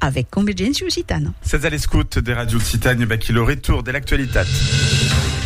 avec Convergència Occitana. Sètz a l'escòut de Ràdio Occitània, vaquí lo retorn de l'actualitat.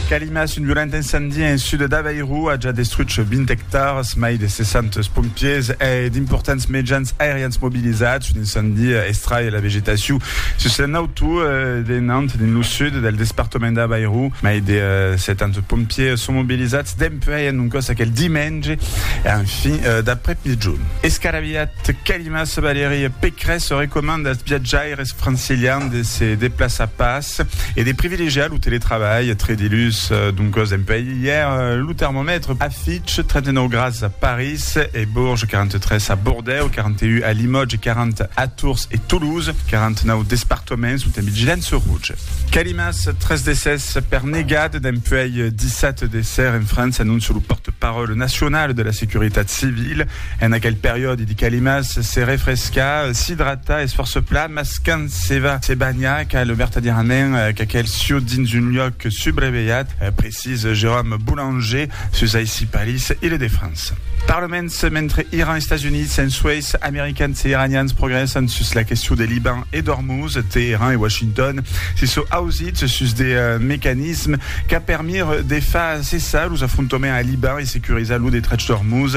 Calimas, un violent incendie en sud d'Avairu a ja destruch 20 hectars, mai de 60 pompiers e d'importants mejans aerians mobilizats. Un incendi estrai la vegetacion sus un auto de Nantes, dins lo sud del despartament d'Avairu. Mai de 70 pompiers son mobilizats dempuèi un còs aquel dimenge en fin d'après-migjon. Escarabilhat, Mas Valerie Pécresse se recomanda als viatjaires francilians de se deplaçar pas e de privilegiar lo teletrabalh tre dilhus. Doncas, dempuèi ièr, lo termomètre afiche 39 grads a París e Bourges, 43 a Bordèu, 41 a Limòtge, 40 a Tours e Toulouse, 49 despartoments son en vigilança roja. Calimas, tres decès per negat dempuèi dissat de ser en França, anóncia lo pòrte-paròle nacional de la Securitat Civila. En aquel periòde de calimas, se refrescar, s'idratar es fòrça plan, mas quand se va se banhar cal vertadièrament qu'aquel sieu dins un luòc subrevelhat, precís Jérôme Boulanger sus aicí Paris, Ile de France. Parlaments, mentre Iran, Estats Units, en Suèis, Americans e Iranians progrèssan sus la question de Liban e d'Ormuz, Teheran e Washington se sò ausits sus de mecanismes qu'a permire de far cessar los afrontoments a Liban e securizar lo detrach d'Ormuz,